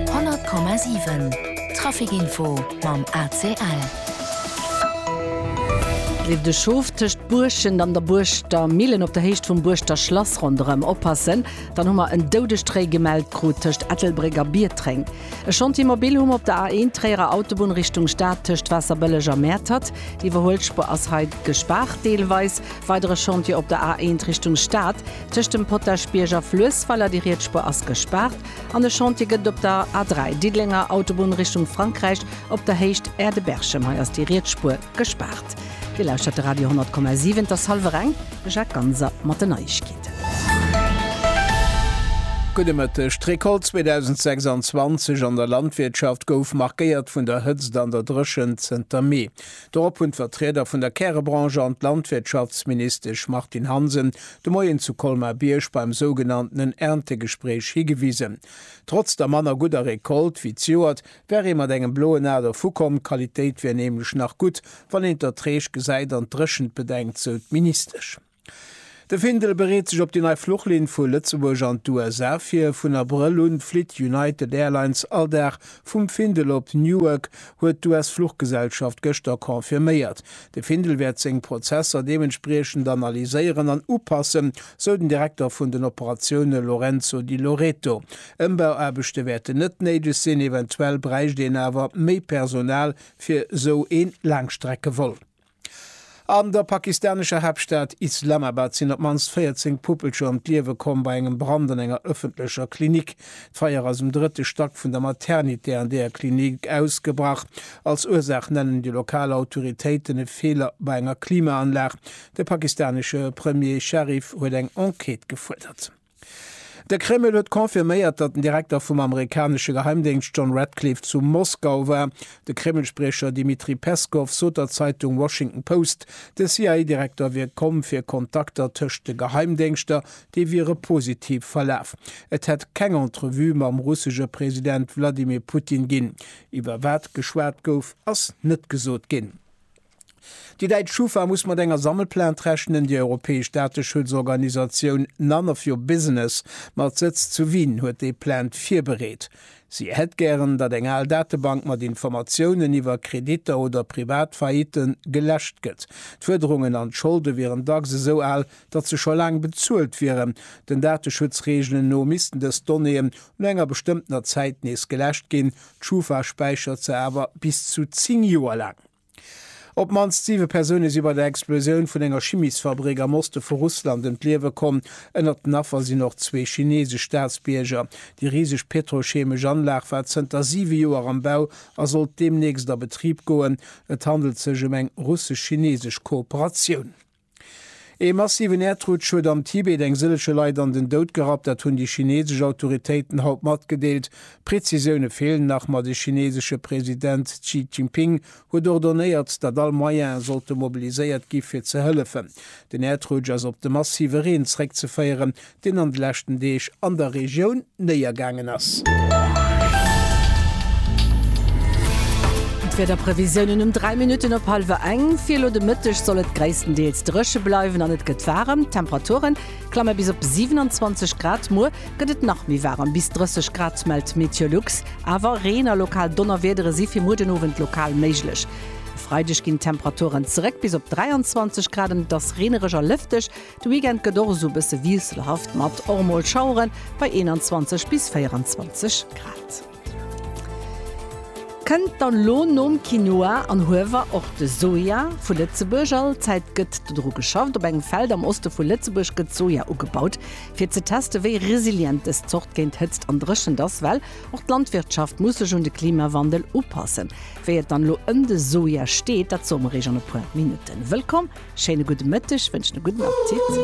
100,7 Trafic Info mam ACL. Leeft e Schof tëscht Buerschent an der Buerschter Millen op der Héicht vum Buerschter Schlass ronderëm? Oppassen, dann hu mer en Doudestréi gemellt krut tëscht Ettelbréck a Biertréng. E Chantier mobil hu mer op der A1 Tréierer Autobunn Richtung Stad tëscht Waasserbëlleg a Mäertert. D'Iwwerhuelspuer ass hei gespaart deelweis. Weidere Chantier op der A1 Richtung Stad. Tëscht dem Potaschbierg a Fluessweiler, déi Rietspur ass gespaart an de Chantier gëtt op der A3, Diddelenger Autobunn Richtung Frankräich, op der Héicht Aire de Berchem. Hei ass déi Rietspur gespaart. Dir lauschtert de Radio 10,7, et ass hallwer eng. De Jacques Ganser mat den Neiegkeeten. Gudde Mëtteg. D'Recolte 2026 an der Landwirtschaft gouf markéiert vun der Hëtzt an der Dréchent zënter Mee. Dorop hunn d'Vertrieder vun der Kärebranche an d'Landwirtschaftsministesch Martine Hansen de Moien zu Colmar-Bierg beim sougenanntenen Erntegespréich higewisen. Trotz der manner gudder Recolte wéi d'Joert, wär ee mat engem bloen Aad ervukomm. D'Qualitéit wär nämlech nach gutt, wann een d'Erträg gesäit an d'Dréchent bedenkt, sou d'Ministesch. De Findel bereet sech op déi nei Fluchlinn vu Lëtzebuerg an d'USA vir. Vun Abrëll un flitt United Airlines all Dag vum Findel op Newark, huet d'US-Fluchgesellschaft gëschter confirméiert. De Findel wäert seng Prozesser deementspriechend analyséieren an upassen, sou den Direkter vun den Operatioune Lorenzo Di Loreto. Ëmbauaarbechte wäerten net néideg sinn, eventuell bräicht een awer méi Personal fir sou ee Laangstreckevol. An der pakistanescher Haaptstad Islamabad sinn op d'mannst 14 Puppelcher ëm d'Liewe komm bei engem Brand an enger ëffentlecher Klinik. D'Feier ass um drëtte Stack vun der Maternité an deeër Klinik ausgebrach. Als Ursaach nennen déi lokal Autoritéiten e Feeler bei enger Klimaanlag. De pakistanesche Premier Sharif huet eng Enquête gefuerdert. De Kreml huet confirméiert, datt den Direkter vum amerikanesche Geheimdéngscht John Ratcliffe zu Moskau war. De Kreml-Spriecher Dmitri Peskow sot der Zeitung Washington Post, de CIA-Direkter wier komm fir Kontakter tëscht de Geheimdéngschter, déi wiere positiv verlaf. Et hätt keng Entrevue mam russesche President Wladimir Putin ginn. Iwwer wat geschwat gouf, ass net gesot ginn. Déi däitsch Schufa muss mat enger Sammelplainte rechnen. Déi europäesch Dateschutzorganisatioun None of your business mat Sëtz zu Wien huet déi Plainte virbereet. Si hätt gären, datt eng al Datebank mat Informatiounen iwwer Kreditter oder privat Faillitte geläscht gëtt. D'Fuerderungen an d'Scholde wieren dacks esou al, datt se scho laang bezuelt wieren. Den Dateschutzreegelen no missten dës Donnéeën no enger bestëmmtener Zäit nees geläscht ginn. D'Schufa späichert se awer bis zu 10 Joer laang. Op d'mannst siwe Persoune si bei der Explosioun vun enger Chimiesfabrik am Oste vu Russland ëm d'Liewe komm. Ënnert den Affer sinn och zwee chineesesch Staatsbierger. Déi riseg petrocheemesch Anlag war zënter siwe Joer am Bau a sollt deemnächst a Betrib goen. Et handelt sech ëm eng russesch-chineesesch Kooperatioun. Ee massiven Äerdrutsch huet am Tibet eng sëllege Leit an den Doud gerappt, dat hunn déi chinesesch Autoritéiten haut matgedeelt. Prezisioune feelen nach, ma de chinesesche President Xi Jinping huet ordonéiert, datt all Moyene sollte mobiliséiert gi fir ze hëllefen. Den Äerdrutsch ass op de massive Reen zeréckzeféieren, deen an de leschten Deeg an der Regioun néiergaangen ass. D'Wiederprevisiounen um 3 Minutten op hallwer eng, Fir elo de Mëtteg soll et gréisstendeels dréche bleiwen an et gëtt waarem. D'Temperature klamme bis op 27 Grad. Muer gëtt et nach méi waarem, bis 30 Grad, mellt Meteolux. Awer Reen a lokal Donnerwiedere si fir muer den Owend lokal méiglech. E Freideg ginn d'Temperaturen zeréck bis op 23 Grad an et ass reenereg a lëfteg. De Weekend gëtt och esou bësse wiesselhaft mat och mol Schaueren bei 21 bis 24 Grad. Kënnt dann lo nom Quinoa an Huewer och de Soja vu Lëtzebuerg? All Zäit gëtt dodru geschafft. Op engem Feld am Oste vu Lëtzebuerg gëtt Soja ugebaut, fir ze teste wéi resilient dës Zort géint Hëtzt an Dréchent ass. Well och d'Landwirtschaft muss sech un de Klimawandel upassen. Wéi et dann elo ëm de Soja steet, dat soe mer Iech an e puer Minutten. Wëllkomm, schéine gudde Mëtteg, wënschen e gudden Appetit.